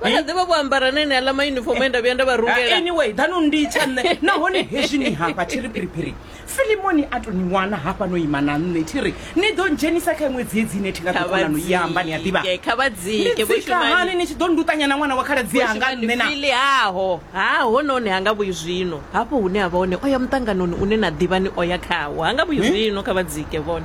vha kha ḓivha vho ambara na ene aḽa maunifomo e nda vhuya nda vha rungela anyway danu ndi tsha nṋe nahone hezwi ni hafha thi ri phiriphiri filimoni a to ni wana hafha no ima na nṋe thi ri ni ḓo dzhenisa kha iṅwe dziedzi ine thi nga ḓo kona no i amba ni a ḓivha Khavhadzike, khavhadzike, ni Vho dzika Shumani. hani ni tshi ḓo ndutanya na ṅwana wa khaladzi yanga nṋe na fili haho ha hononi ha nga vhuyi zwino hafho hune a vha hone o ya muṱanganoni une na ḓivha ni o ya khawo ha nga vhuyi zwino kha vha dzike vhone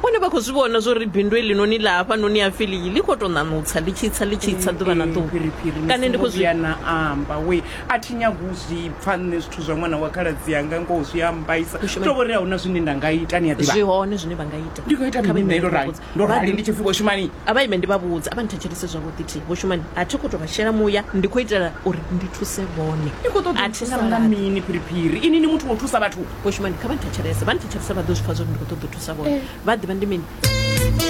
Vhone vha khou zwi vhona zwo ri bindu heḽinoni ḽa hafhanoni ha Filiyi ḽi khou tou ṋaṋutsa ḽi tshi tsa ḽi tshi tsa ḓuvha na ḓuvha. Phiriphiri ni songo vhuya na amba wee, a thi nyagi u zwi pfa nṋe zwithu zwa ṅwana wa khaladzi anga, ngoho zwi a mmbaisa. Hu tou vho ri a hu na zwine nda nga ita, ni a ḓivha. Zwi hone zwine vha nga ita. Ndi nga ita mini nṋe? Ndo rali, ndo rali ndi tshi pfi vho Shumani. A vha ime ndi vha vhudze, a vha nthetshelese zwavhuḓi thi, Vho Shumani, a thi khou tou vha shela muya, ndi khou itela uri ndi thuse vhone. Ni khou ṱoḓa u nthusa nga mini Phiriphiri? Inwi ni muthu wa u thusa vhathu? Vho Shumani kha vha nthetshelese, vha nthetshelese vha ḓo zwi pfa zwa uri ndi khou ṱoḓa u thusa vhone, vha a ḓivha ndi mini.